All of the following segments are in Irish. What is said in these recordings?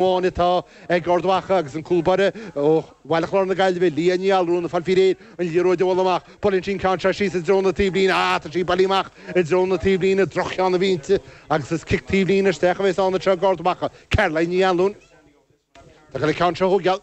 amháin atá ag Ard Mhacha agus an cúl baire ó Bhaile Chláir na Gaillimhe, Leah Ní Allmhuráin, ag fáil faoi réir an liathróid a bhualadh amach. Buaileann sí an ceann seo síos i dtreo na taobhlíne. Ah, tá sí bailithe amach i dtreo na taobhlíne, droch-cheann a bhí inti agus is cic taobhlíne isteach a bheas ann anseo ag Ard Mhacha. Caroline Ní Anluain atá ag goil an ceann seo a thóigeáil.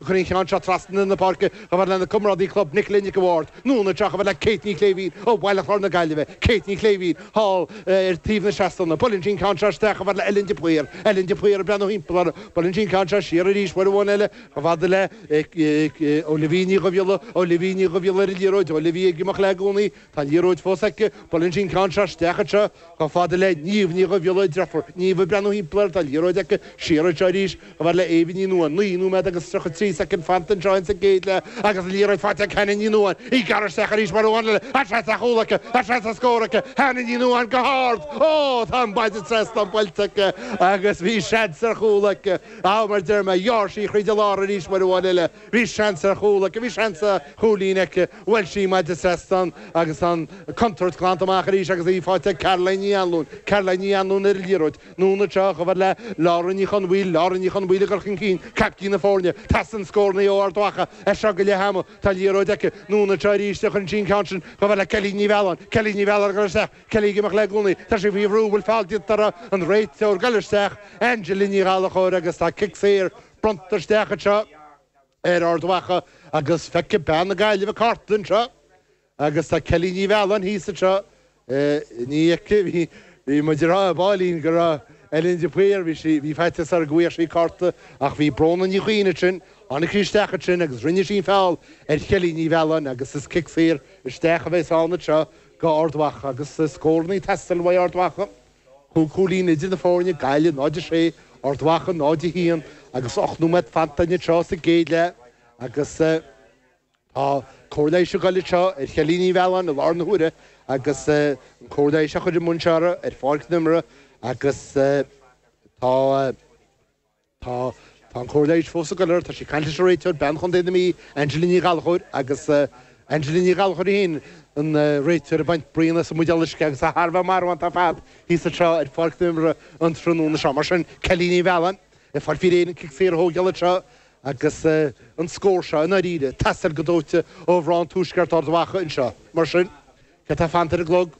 Chuir an ceann seo trasna na páirce chomh fada lena comrádaí club Nicola Nic an Bhaird, anonn anois chomh fada le Kate Ní Shléibhín ó Bhaile Chláir na Gaillimhe, Kate Ní Shléibhín, thall ar thaobh na seastán. Buaileann sí an ceann seo isteach chomh fada le Ellen de Paor, Ellen de Paor ag breathnú thimpeall uirthi. Buaileann sí an ceann seo siar arís uair amháin eile chomh fada le Olivia Ní Dhubhghiolla, Olivia Ní Dhubhghiolla ar an liathróid, Olivia ag imeacht léi i gcónaí, Tá liathróid fós aici, buaileann sí an ceann seo isteach anseo, chomh fada le Niamh Ní Dhubhghiolla, deirfiúr Niamh, ag breathnú thimpeall air, tá liathróid aici, siar anseo arís, chomh fada le Eva Ní Nuadháin, 9 nóiméad agus 33 soicind fanta anseo insa gcéad leath agus an liathróid faighte ag Hannah Ní Nuadháin, í ag gearradh isteach arís uair amháin eile, tá seans ar chúl aici, tá seans ar scór aici, Hannah Ní Nuadháin go hard, oh, tá an maide trasna buailte aici agus bhí seans ar chúl aici, ah, mar deir mé, ghearr sí thríd an lár arís uair amháin eile. Bhí seans ar chúl aici, bhí seans ar chúilín aici. Bhuail sí maide seastán agus an contúirt glanta amach arís agus í faighte ag Caroline Ní Anluain, Caroline Ní Anluain ar an liathróid, anonn anseo chomh fada le Lauren Ní Chonmhaoil, Lauren Ní Chonmhaoil ag goil chun cinn, caiptín na foirne. Teastaíonn scórannaí ó Ard Mhacha as seo go leith ama. Tá liathróid aici, anonn anseo arís a chuireann sí an ceann sin chomh fada le Kelly Ní Mhealláin, Kelly Ní Mhealláin ag dul isteach, Kelly ag imeacht léi i gcónaí. Tá sí faoi bhrú, bhfuil feall déanta uirthi? An réiteoir ag dul isteach, Angela Ní Ghallachóir, agus tá cic saor bronnta isteach anseo ar Ard Mhacha agus feicfidh bean na Gaillimhe cárta anseo agus tá Kelly Ní Mhealláin thíos anseo, ní fheicim, bhí muid ag rá ar baillín go raibh Ellen de Paor, bhí sí, bhí faitíos orm go bhfaigheadh sí cárta ach bhí Bróna Ní Chuinn ansin, tháinig sí isteach ansin agus rinne sí feall ar Kelly Ní Mhealláin agus is cic saor isteach a bheas ann anseo go Ard Mhacha agus scórannaí ag teastáil uaidh Ard Mhacha. Chúig chúilín idir na foirne Gaillimh 0-6, Ard Mhacha 0-1 agus ocht nóiméad fanta anseo sa gcéad leath agus tá cóir leighis ag dul anseo ar Kelly Ní Mhealláin i láthair na huaire agus an cóir leighis á chur i mbun seo ar pháirc na himeartha agus tá Tá an chóir leighis fós ag goil air. Tá sí ag caint leis an réiteoir, bean Chontae na Mí, Angela Ní Ghallachóir, agus Angela Ní Ghallachóir í féin, an réiteoir, ag baint braon as an mbuidéal uisce agus é thar a bheith marbhánta ar fad thíos anseo ar pháirc na himeartha an tráthnóna seo. Mar sin, Kelly Ní Mhealláin ag fáil faoi réir an cic saor a thóigeáil anseo agus an scór seo, i ndáiríre, ag teastáil go dóite ó mhná an tuaiscirt, Ard Mhacha anseo. Mar sin, céard atá fanta ar an gclog?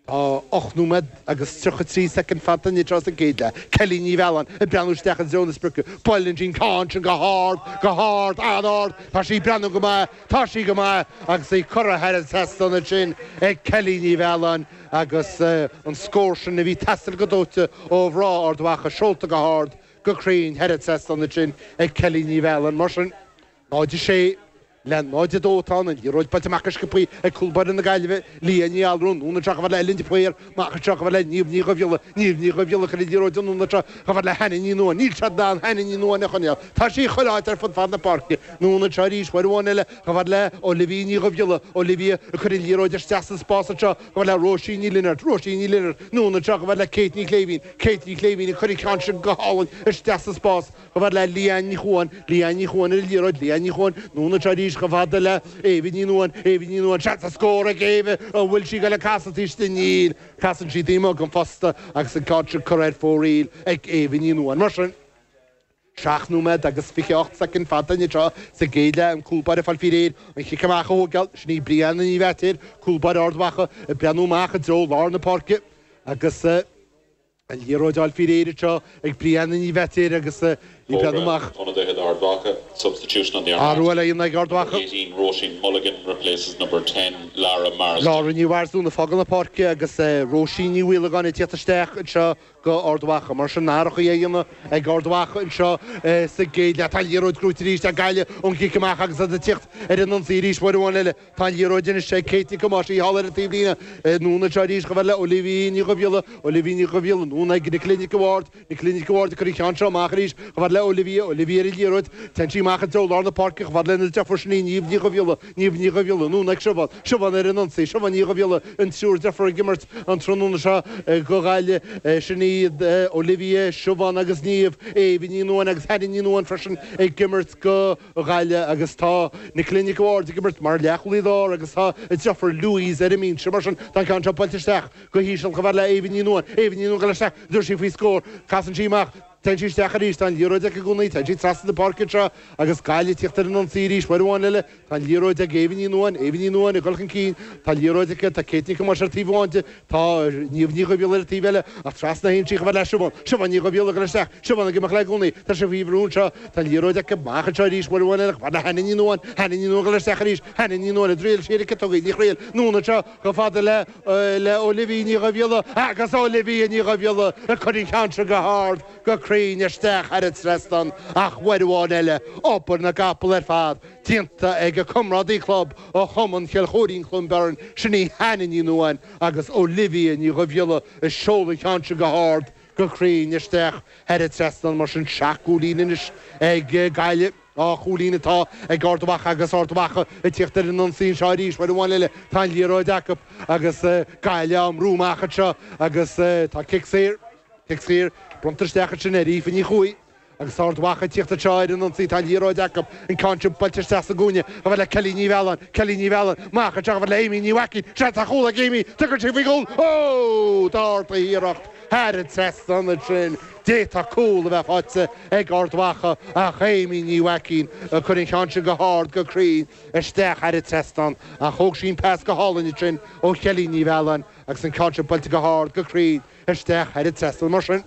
Tá 8 nóiméad agus 33 soicind fanta anois sa gcéad leath. Kelly Ní Mhealláin ag breathnú isteach i dtreo na sprioce. Buaileann sí an ceann sin go hard, go hard, an-ard. Tá sí ag breathnú go maith, tá sí go maith agus í curtha thar an trasnán ansin ag Kelly Ní Mhealláin agus an scór sin a bhí ag teastáil go dóite ó mhná Ard Mhacha seolta go hard, go cruinn thar an trasnán ansin ag Kelly Ní Mhealláin. Mar sin, 0-6. Lean 0 2 Tá an liathróid buailte amach go sciopthaí ag cúl báire na Gaillimhe, Leah Ní Allmhuráin, anonn anseo chomh fada le Ellen de Paor, amach anseo chomh fada le Niamh Ní Dhubhghiolla, Niamh Ní Dhubhghiolla ag cur an liathróid anonn anseo chomh fada le Hannah Ní Nuadháin, Níl siad in ann Hannah Ní Nuadháin a choinneáil, tá sí ag chuile áit ar fud fad na páirce, anonn anseo arís Uair amháin eile chomh fada le Olivia Ní Dhubhghiolla, Olivia ag cur an liathróid isteach san spás anseo chomh fada le Róisín Ní Lionaird, Róisín Ní Lionaird, anonn anseo chomh fada le Kate Ní Shléibhín, Kate Ní Shléibhín ag cur an ceann sin go hálainn isteach sa spás, Chomh fada le Leanne Ní Chuain, Leanne Ní Chuain ar an liathróid, Leanne Ní Chuain, anonn anseo arís chomh fada le Éabha Ní Nuadháin, Éabha Ní Nuadháin, seans ar scór ag Éabha, an bhfuil sí ag dul ag casadh isteach di? Níl. Casann sí taobh amuigh den phosta agus an ceann sin curtha ar fóraoil ag Éabha Ní Nuadháin. Mar sin, 7 nóiméad agus 28 soicind fanta anois anseo sa gcéad leath, an cúlbáire ag fáil faoi réir an cic amach a thógáil, sin í Brianna Ní Bheaitéir, cúlbáire Ard Mhacha, ag breathnú amach i dtreo lár na páirce agus, An liathróid á fáil faoi réir anseo ag Brianna Ní Bheatéir agus í ag breathnú amach. Athrú á dhéanamh ag Ard Mhacha. Lara Ní Mharsdún ag fágáil na páirce agus Róisín Ní Mhaolagáin ag teacht isteach anseo do Ard Mhacha. Mar sin athruithe á dhéanamh ag Ard Mhacha anseo sa gcéad leath. Tá an liathróid gnóite arís ag Gaillimh ón gcic amach agus iad ag teacht ar an ionsaí arís. Uair amháin eile. Tá an liathróid anois ag Kate Nic Thomáis, í thall ar an taobh líne, anonn anseo arís chomh fada le Olivia Ní Dhubhghiolla, Olivia Ní Dhubhghiolla, anonn ag Nicola Nic an Bhaird, Nicola Nic an Bhaird ag cur an ceann seo amach arís chomh fada le Olivia, Olivia ar an liathróid, téann sí amach i dtreo lár na páirce chomh fada lena deirfiúr sin í Niamh Ní Dhubhghiolla, Niamh Ní Dhubhghiolla, anonn ag Siobhán, Siobhán ar an ionsaí, Siobhán Ní Dhubhghiolla, an triúr deirfiúr ag imirt an tráthnóna seo do Ghaillimh, sin iad Olivia, Siobhán agus Niamh, Éabha Ní Nuadháin agus Hannah Ní Nuadháin freisin ag imirt do. Ghaillimh agus tá Nicola Nic an Bhaird ag imirt mar leathchúlaí láir agus tá a deirfiúr Louise ar an mbinse. Mar sin tá an ceann seo buailte isteach go híseal chomh fada le Éabha Ní Nuadháin. Éabha Ní Nuadháin isteach, an dtabharfaidh sí faoi scór, casann sí amach, téann sí isteach arís, tá an liathróid aici i gcónaí, téann sí trasna na páirce anseo agus Gaillimh ag teacht ar an ionsaí arís, uair amháin eile, tá an liathróid ag Éabha Ní Nuadháin, Éabha Ní Nuadháin ag dul chun cinn, tá an liathróid aici, tá Kate Nic Thomáis ar taobh amháin di, Tá Niamh Ní Dhubhghiolla ar an taobh eile, ach trasna a théann sí chomh fada le Siobhán. Siobhán Ní Dhubhghiolla ag dul isteach, Siobhán ag imeacht léi i gcónaí. Tá sí faoi bhrú anseo. Tá an liathróid aici amach anseo arís, uair amháin eile chomh fada le Hannah Ní Nuadháin, Hannah Ní Nuadháin ag dul isteach arís, Hannah Ní Nuadháin an dtriailfidh sí an cic a thógáil, ní thriailfidh, anonn anseo chomh fada le, le Olivia Ní Dhubhghiolla agus Olivia Ní Dhubhghiolla ag cur an ceann seo go hard, go cruinn isteach thar an trasnán ach uair amháin eile, obair na gcapall ar fad déanta ag a comrádaí club, ó Chumann Chill Choirín-Cluain Bheirn, sin í Hannah Ní Nuadháin agus Olivia Ní Dhubhghiolla a sheol an cheann seo go hard go cruinn isteach thar an trasnán mar sin. Seacht gcúilín anois ag Gaillimh, dhá chúilín atá ag Ard Mhacha agus Ard Mhacha ag tíocht ar an ionsaí anseo arís. Uair amháin eile tá an liathróid acu agus Gaillimh á mbrú amach anseo agus tá cic saor, cic saor bronnta isteach ansin ar Aoife Ní Chuaig. Agus Ard Mhacha ag tíocht anseo ar an ionsaí tá an liathróid acu, an ceann sin buailte isteach sa gcúinne, chomh fad le Kellie Ní Mhealláin, Kellie Ní Mhealláin, amach anseo, chomh fad le Aimee Ní Mhaicín, seans ar chúl ag Aimee, tabharfaidh sí faoi chúl, oh! d'ardaigh a hiarracht thar an trasnán ansin, d'fhéadfadh cúl a bheith faighte ag Ard Mhacha ach Aimee Ní Mhaicín a chuir an cheann sin go hard, go cruinn isteach thar an trasnán ach thóg sí an pas go hálainn ansin ó Chellie Ní Mhealláin agus an ceann sin buailte go hard, go cruinn isteach thar an trasnán mar sin.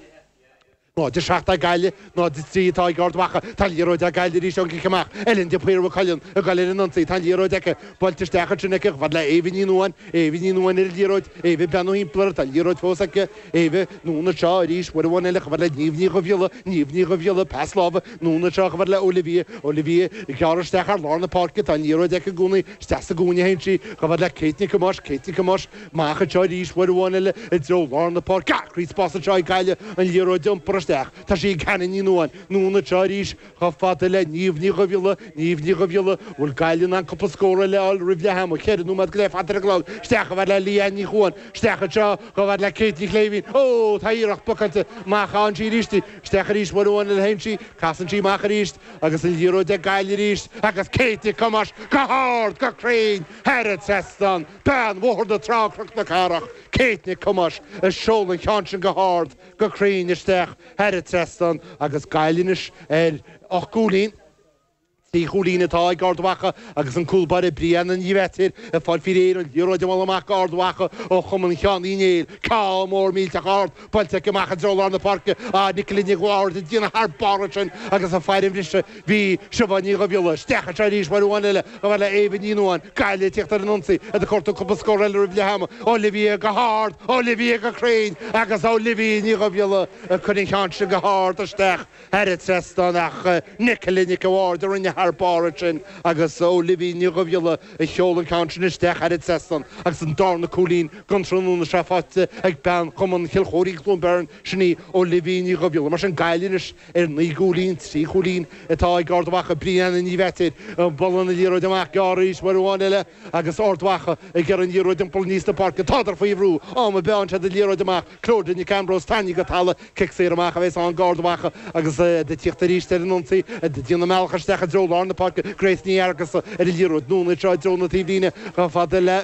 07 ag Gaillimh, 03 atá ag Ard Mhacha. Tá an liathróid ag Gaillimh arís ón gcic amach. Ellen de Paor Mhaigh Cuilinn ag goil ar an ionsaí. Tá an liathróid aici. Buailte isteach ansin aici chomh fad le Éabha Ní Nuadháin. Éabha Ní Nuadháin ar an liathróid. Éabha ag breathnú thimpeall uirthi. Tá an liathróid fós aici. Éabha, anonn anseo arís uair amháin eile chomh fad le Niamh Ní Dhubhghiolla. Niamh Ní Dhubhghiolla, pas láimhe. Anonn anseo chomh fad le Olivia. Olivia ag gearradh isteach thar lár na páirce. Tá an liathróid aici i gcónaí. Isteach sa gcúinne a théann sí. Chomh fad le Kate Nic Thomáis. Kate Nic Thomáis. Amach anseo arís, uair amháin eile, i dtreo lár na páirce. Acraí spáis anseo ag Gaillimh, an liathróid a iompar isteach. Tá sí ag Hannah Ní Nuadháin. Anonn anseo arís, chomh fada le Niamh Ní Dhubhghiolla. Niamh Ní Dhubhghiolla, an bhfuil Gaillimh in ann cúpla scór eile a fháil roimh leath ama? Ceithre nóiméad go leith fanta ar an gclog. Isteach chomh fad le Leanne Ní Chuain. Isteach anseo, chomh fad le Kate Ní Shléibhín. Ó! Tá an iarracht blocáilte. Amach a théann sí arís. Isteach arís uair amháin eile a théann sí. Casann sí amach arís. Agus an liathróid ag Gaillimh arís. Agus Kate Nic Thomáis go hard, go cruinn, thar an trasnán. Bean Bhóthar na Trá-Cnoc na Cathrach, Kate Nic Thomáis, a sheol an cheann sin go hard, go cruinn isteach thar an trasnán agus Gaillimh anois ar ocht gcúilín, trí chúilín atá ag Ard Mhacha agus an cúl báire Brianna Ní Mheatair ag fáil faoi réir an liathróid a bhualadh amach go Ard Mhacha ó chumann Sheáin Uí Néill. Cic mór millteach ard Buailte aici amach i dtreo lár na páirce, ach Nicola Nic a' Bhaird a rinne thar barr ansin agus an faill a bhriseadh. Bhí Siobhán Ní Dhubhghiolla isteach anseo arís uair amháin eile chomh fad le Éabha Ní Nuadháin, Gaillimh ag tíocht ar an ionsaí iad ag cuartú cúpla scór eile roimh leath ama. Olivia go hard, Olivia go cruinn agus Olivia Ní Dhubhghiolla ag cur an cheann sin go hard isteach. thar an trasnán ach Nicola Nic a' Bhaird a rinne thar barr ansin agus Olivia Ní Dhubhghiolla a sheol an ceann sin isteach thar an trasnán agus an darna cúilín gon tráthnóna seo faighte ag bean Chumann Chill Choirín-Cluain Bheirn, sin í Olivia Ní Dhubhghiolla. Mar sin Gaillimh anois ar naoi gcúilín, trí chúilín atá ag Ard Mhacha, Brianna Ní Mheatair ag bualadh na liathróide amach gearr arís uair amháin eile agus Ard Mhacha ag iarraidh an liathróid a iompar aníos an pháirc. Tádar faoi bhrú, am a mheánn siad an liathróid amach, Clódagh Nic Ambróis tarraingthe go talamh cic saor amach a bheas ann go Ard Mhacha agus iad ag tíocht arís ar an ionsaí ag déanamh a mbealach isteach i dtreo lár na páirce Grace Ní Fheargusa ar an liathróid anonn anseo i dtreo na taobhlíne chomh fada le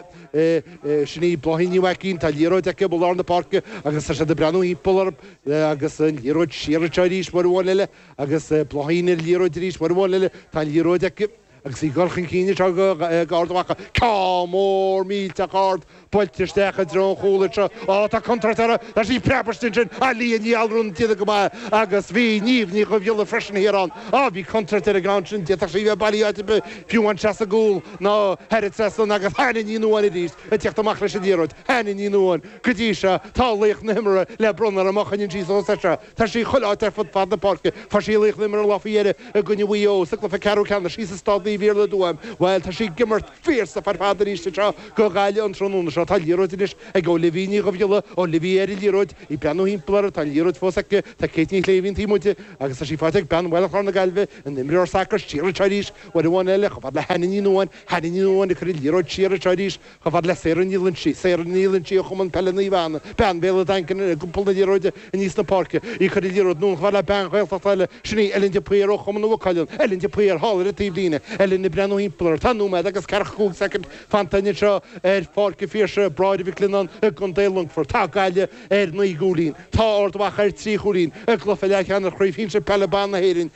Sin í Bláithín Ní Mhaicín Tá an liathróid aici i lár na páirce agus tá siad ag breathnú thimpeall orthu agus an liathróid siar anseo arís uair amháin eile agus Bláithín ar an liathróid arís uair amháin eile Tá an liathróid aici Agus í ag dul chun cinn anseo ag Ard Mhacha, ceann mór millteach ard buailte isteach i dtreo an chúil anseo. Ó, tá contúirt uirthi! Tá sí preabairte ansin! Á, Liadh Ní Allmhuráin, déanta go maith. Agus bhí Niamh Ní Dhubhghiolla freisin thiar ann. Á, bhí contúirt ar an gceann sin, d'fhéadfadh sí bheith bailithe áit ar bith, fiú amháin isteach sa gcúl nó thar an trasnán. Agus Hannah Ní Nuadháin arís ag teacht amach leis an liathróid. Hannah Ní Nuadháin, go dtí seo, tá laoch na himeartha le bronnadh ar an mboc, an insíos ós ise? Tá sí chomh láidir ar fud fad na páirce. Fuair sí laoch na himeartha an lá faoi dheireadh i gcoinne Mhaigh Eo sa gcluiche ceathrú ceannais thíos i Staid Naomh Iarlaith i dTuaim. Bhuel, tá sí ag imirt fierce ar fad arís anseo go Gaillimh an tráthnóna seo. Tá an liathróid anois ag Olivia Ní Dhubhghiolla. Olivia ar an liathróid. Í ag breathnú thimpeall uirthi. Tá an liathróid fós aici. Tá Kate Ní Shléibhín taobh amuigh di agus tá sí faighte ag bean Bhaile Chláir na Gaillimhe, an imreoir sacair siar anseo arís uair amháin eile, chomh fada le Hannah Ní Nuadháin. Hannah Ní Nuadháin ag cur an liathróid siar anseo arís. Chomh fada le Sarah Ní Loinsigh, Sarah Ní Loinsigh ó Chumann Peile Naomh Anna, bean Bhéal an Daingin ag iompar na liathróide aníos na páirce, í ag cur an liathróid anonn chomh fada le bean Ghaeltachta eile, sin í Ellen de Paor ó Chumann Mhaigh Cuilinn, Ellen de Paor, thall ar an taobhlíne. Ellen ag breathnú thimpeall uirthi. Tá nóiméad agus ceathracha cúig soicind fanta anois anseo ar Pháirc an Phiarsaigh, Bráithre Mhic Leannáin i gContae Longfoirt. Tá Gaillimh ar naoi gcúilín. Tá Ard Mhacha ar trí chúilín. I gcluiche leathcheannais Chraobh Shinsir Peile Ban na hÉireann,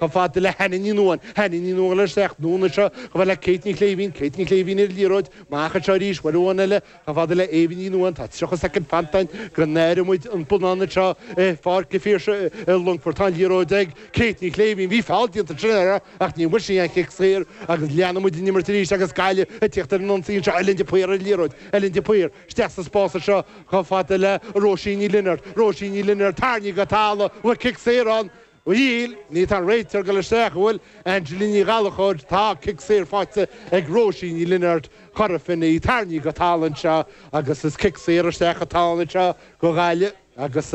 Chomh fada le Hannah Ní Nuadháin, Hannah Ní Nuadháin ag teacht anonn anseo, chomh fada le Kate Ní Shléibhín, Kate Ní Shléibhín ar an liathróid, amach anseo arís uair amháin eile, chomh fada le Eva Ní Nuadháin, tá 30 soicind fanta againn go n-aireoidh muid an bonnán anseo ar Pháirc an Phiarsaigh i Longfort. Tá an liathróid ag Kate Ní Shléibhín, bhí feall déanta ansin uirthi ach níor bhain sí aon chic saor agus leanfaidh muid an imirt arís agus Gaillimh ag tíocht ar an ionsaí anseo, Ellen de Paor ar an liathróid, Ellen de Paor isteach sa spás anseo chomh fada le Róisín Ní Lionáird, Róisín Ní Lionáird, tarraingthe go talamh, bhfuil cic saor ann? Níl, níl, tá an réiteoir ag dul isteach, an bhfuil, Angela Ní Ghallachóir? Tá cic saor faighte ag Róisín Ní Lionáird, Cora Finne, í tarraingthe go talamh anseo agus is cic saor isteach atá ann anseo go Gaillimh agus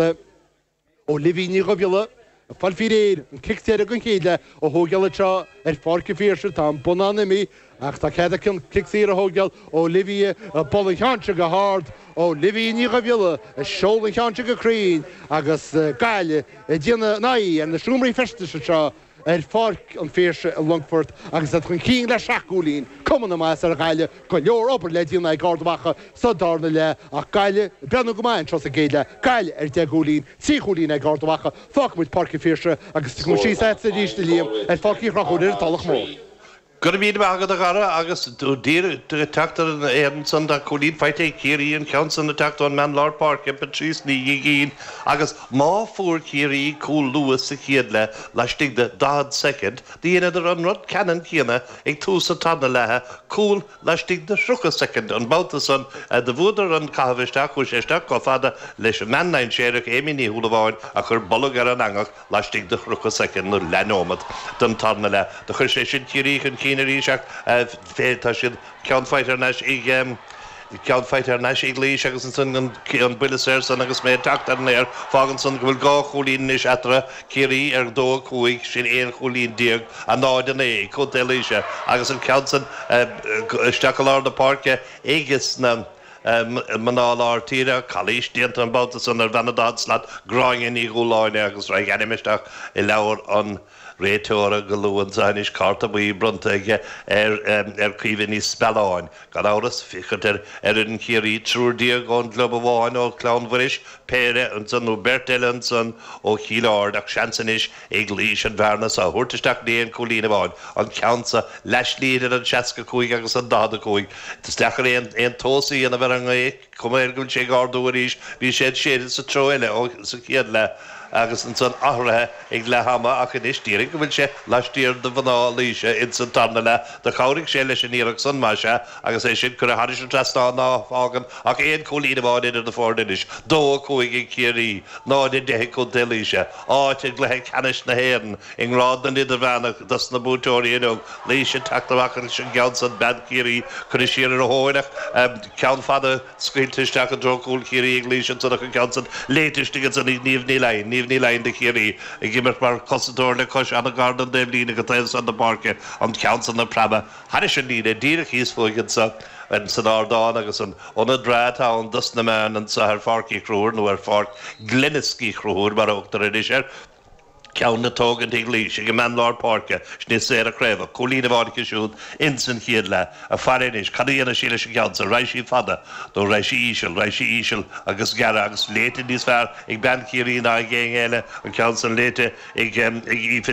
Olivia Ní Dhubhghiolla ag fáil faoi réir an cic deiridh den chéad leath a thógáil anseo ar Pháirc an Phiarsaigh. Tá an bonnán imithe. Ach tá cead aici an cic saor a thógáil Olivia ag bualadh an cheann seo go hard, Olivia Ní Dhubhghiolla ag seoladh an cheann seo go cruinn agus Gaillimh ag déanamh a n-aghaidh ar na seomraí feistis anseo ar Pháirc an Phiarsaigh i Longfort agus iad chun cinn le seacht gcúilín. Cuma na maitheasa ar Ghaillimh, go leor obair le déanamh ag Ard Mhacha sa darna leath ach Gaillimh ag breathnú go maith anseo sa gcéad leath. Gaillimh ar deich gcúilín, trí chúilín ag Ard Mhacha. Fágfaimid Páirc an Phiarsaigh agus tiocfaimid síos a'tsa arís, a Liam, ar Pháirc Uí Chonchúir ar an Tulach Mhór. Go raibh míle maith agat a Dhara agus díreach ag teacht ar an aer ansan tá cúilín faighte ag Ciarraí an ceann san ag teacht ón mbean lár páirce, Patrice Ní Dhigín, agus má fuair Ciarraí cúl luath sa chéad leath laistigh de 40 soicind do dheineadar an rud ceannann céanna ag tús an tarna leatha cúl laistigh de 30 soicind an babhta san do bhuadar an caitheamh isteach chuaidh sé isteach chomh fada leis an mbean dainséarach Amy Ní Shúilleabháin a chuir bolg ar an eangach laistigh de 30 soicind nó leathneomat den tarna leath, do chuir sé sin Ciarraí chun cinn arís ach fé, tá siad ceann faighte thar n-ais ag, ceann faighte thar n-ais ag Laois agus ansan an buille saor san agus mé ag teacht ar an aer, fágann san go bhfuil dhá chúilín anois eatarthu, Ciarraí ar 2-5, sin aon chúilín déag, 0-9 ag Contae Laoise agus an ceann san isteach i lár na páirce ag na. mná lár tíre, calaois déanta an babhta san ar bhean an daichead slat, Gráinne Ní Dhúláine agus raghaidh ainm isteach i leabhar an réiteora go luath anso anois, cárta buí bronnta aige ar Caoimhe Ní Spealáin, gan amhras, féachaint ar fhoireann Chiarraí, triúr déag ón gclub amháin, ó Chlann Mhuiris, péire ansan nó beirt eile ansan ó Chill Ard, ach seans anois ag Laois an bhearna so a thabhairt isteach in aon cúilín amháin, an ceann so, leath-slí idir an 65 agus an 45. Is deacair aon tomhas a dhéanamh ar an ngaoth, cuma air go bhfuil sé ag ardú arís, bhí sé ag séideadh sa treo eile sa chéad leath, agus ansan athraithe ag leath ama, ach anois déarfainn go bhfuil sé laistiar de mhná Laoise ins an tarna leath. Do chabhraigh sé leis an iarracht san, má sea, agus é sin curtha thairis an trasnán ná fágann ach aon cúilín amháin idir na foirne anois, 2-5 ag Ciarraí, 0-10 ag Contae Laoise. áit i gcluiche ceannais na hÉireann i ngrád na n-idirmheánach dos na buaiteoirí inniu, Laois ag teacht amach leis an gceann san bean Chiarraí cuireadh siar ar a thóin ach ceann fada scaoilte isteach i dtreo cúl Chiarraí ag Laois ansan ach an ceann san léite istigh ansan ag Niamh Ní Laighin Niamh Ní Laighin do Chiarraí ag imirt mar cosantóir le cois ana-gar don taobhlíne go taobh san na páirce an ceann san ag preabadh thairis an líne díreach thíos fúinn anso insan ardán agus an ionad breá atá ann dos na meáin anso ar Pháirc Uí Chonchúir, nó ar Pháirc Glenisk Uí Chonchúir mar a thugtar anois air, ceann le tógaint ag Laois ag an mbean lár páirce, sin í Sarah Craobhach, cúilín amháin aici siúd insan chéad leath. Ag faire anois cad a dhéanfaidh sí leis an gceann so, raghaidh sí fada nó raghaidh sí íseal, raghaidh sí íseal agus gearra agus léite níos fearr ag bean Chiarraí ná ag éinne eile an ceann san léite ag Aoife